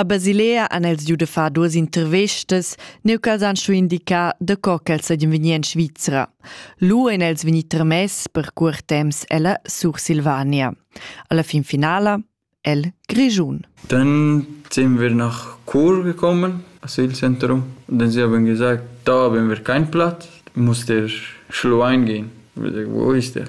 A Basilea han els giu da far duas intervestas, neu ch'els han schu indicar da co ch'els seigien vegnir en Svizra. Lu ein els vegni tramess per cuort temps ella Sursilvania. Alla fin finala el Grischun. Dann sind wir nach Chur gekommen, Asylzentrum. Und dann sie haben gesagt, da haben wir keinen Platz, muss der Schluein gehen. Ich habe gesagt, wo ist der?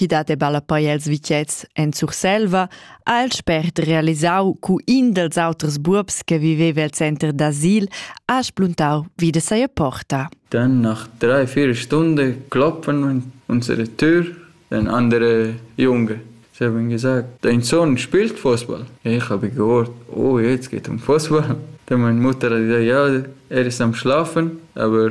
chi dat e balla poi els vitets en Surselva, ha el spert realisau cu in dels auters buobs che viveva al center d'asil ha spluntau vi de seia porta. Dann nach drei, vier Stunden kloppen unsere Tür, ein andere Junge. Sie haben gesagt, dein Sohn spielt Fußball. Ich habe gehört, oh, jetzt geht um Fußball. Dann meine Mutter hat gesagt, ja, er ist am Schlafen, aber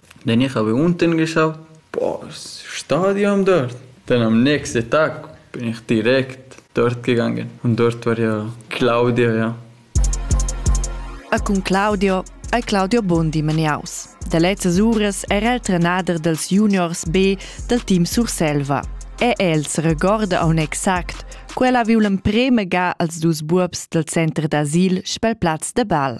Nenier havev'unten geschau pos stadium dort. Dann am nächsten Tag bin ich direkt dort gegangen und dort war ja Claudia ja. E cun Claudio ei Claudio Bondi meniaus. Da lezzas uras era el trenader dels juniors B del team Surselva. E els regorda aun exact, quella viu l'emprema ga als dus buobs del center d'asil spel plaz de bal.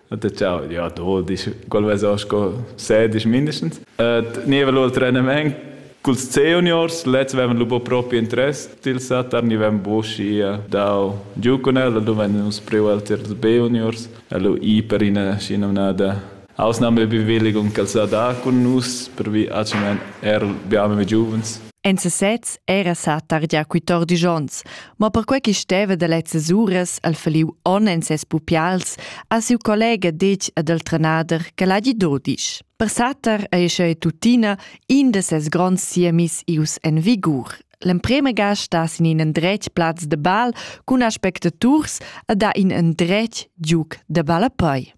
Da ciao, ja, do, disch, qual vesa sco se, disch mindestens. Niva lur trenament culs juniors, lezs avevan lu propi interess dil satar, ni avevan buschi dau giu cun el, lu vein nus priu els tiers B-juniors, e lu i per ina schinomnada ausnahme Bewilligung ch'el sa da cun nus, pervi actualment er biamo giuvens. En sesez era satar gia quei tor disch onns, Ma perquei che steva da lezzas uras al faliu on en ses pupials ha siu collega detg ad el trenader che l'hagi dodisch. Per satar ei sche tuttina in da ses gronds siemis ius en vigur. L'emprema ga sta sin in endretg plaz de bal cun aspectaturs a da in endretg giuc de ballapei.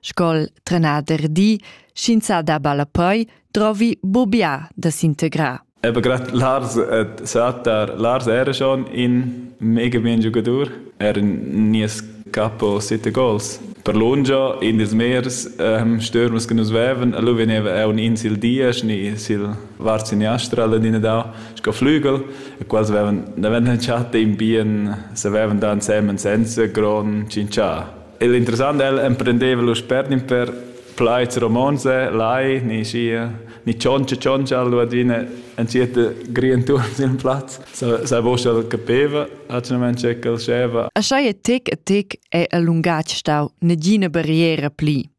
Sco'l trenader di, sch'ins ha da ballapoi, drovi bubià da s'integrar. Eben gerade Lars hat gesagt, Lars era schon ein mega bien Jugador. Er nie capo sette goals. Per lungia in des meers ähm, stürmers que nus veven, lu veneva un in sil dies, ni sil varziniastra alla dina da, sco flügel, e quals veven, da veven chat in bien, se veven da ensemen senza gron cincià. Il interessant el emprendeva lu spergnin per plaids romonts, lai, ni sia, ni tschontscha tschontscha lu adina entschiet grientur sin plaz. Sa sa vos el capeva atgnament che el scheva. Aschai e tec e tec è il lungatg stau negina barriera pli.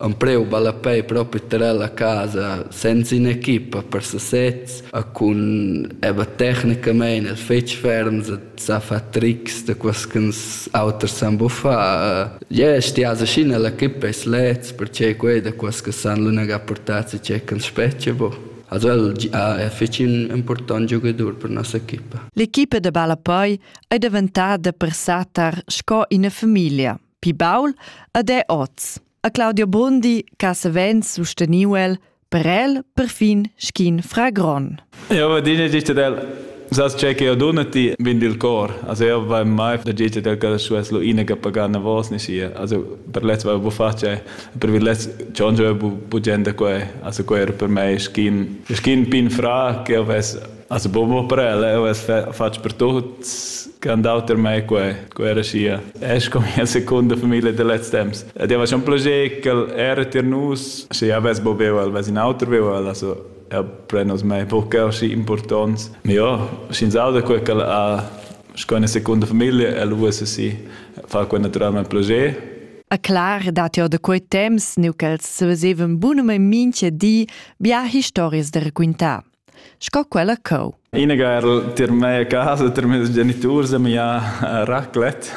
Empleu ballapei propi tar ella casa senza in'equipa per sesez e cun era tecnicamein el fetg ferms e sa far trics da quels ch'ins auters san buffar. Jeu stiasa sc'ina l'equipa eis leds pertgei quei da quels che san lunegar portazzi tgei ch'ins spetga buc. Also el è fetg important giugadur per nossa equipa. L'equipa da ballapei ei daventada per sa tar sco ina famiglia. Pi baul ed è oz. A Claudio Brundi ca savens susteniu el per el perfin schin fragron. Eu va dina gita del Sas ce che eu duna ti vin dil cor. Also eu va mai da gita del ca su es lo ina che pagana vos ni sia. Also per lez va bu face, per vi lez chonjo bu bu gente quei. Also quei er per me schin schin pin fra che eu ves Also Bobo Prele, ho es fatg per tuts che han dau ter mei quei, quei era schia. Es come la seconda famiglia de lez temps. Ed era schon plager che era ter nus, se ja ves bo veu ves in auter veu el, also er prenos mei buca aschi importants. Ma ja, sch'ins auda quei che ha sco una seconda famiglia, el uossa si fa quei naturalmente plager. A clar dat jo da quei temps, neu ch'els se vesevan bunum in minche di, bia historias da raquintar. sco quella cheu. Ina garl tier mei a casa, tier mes geniturs e mi ha raclet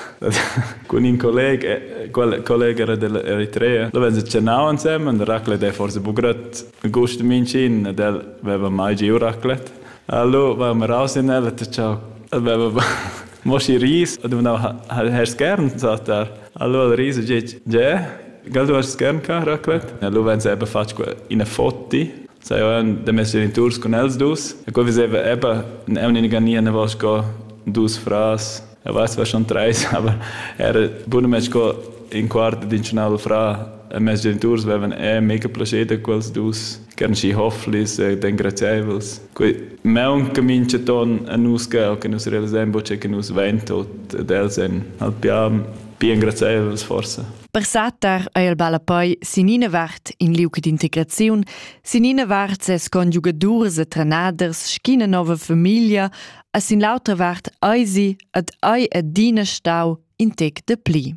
cun in colleg, quel colleg era dell'Eritrea. Da wenn se cenau ansem und raclet è forse bu grad gust mincin, del veva mai giu raclet. Allo va mir raus in el et ciao. Veva mo si ris, du na hast gern sagt er. Allo al ris ge, Gell du hast gern ka raclet? Allo wenn se eben fatg ina fotti Sajan demest geniturs cun els dus. E qua veseva Ebba un'unica nia nevà sco dus fras. Eu vess schon treis, aber era bunament sco in quart d'inchinal fra e mes geniturs vevan e mega plascher da quels dus, che eran schi hofflis e engraziaivels. Quei meun che mincha ton a nus ga o che nus realisain bo che nus vain tot ed els ein halt pia bien graziaivels forsa. Per satar ei el ballapoi sin ina vart in liuc d'integraziun, sin ina vart ses conjugadurs e trenaders sch'ina nova famiglia, e sin l'autra vart eisi ad ei adina stau in tec de pli.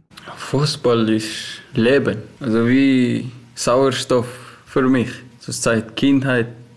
Fußball ist Leben, also wie Sauerstoff für mich. Zurzeit Kindheit,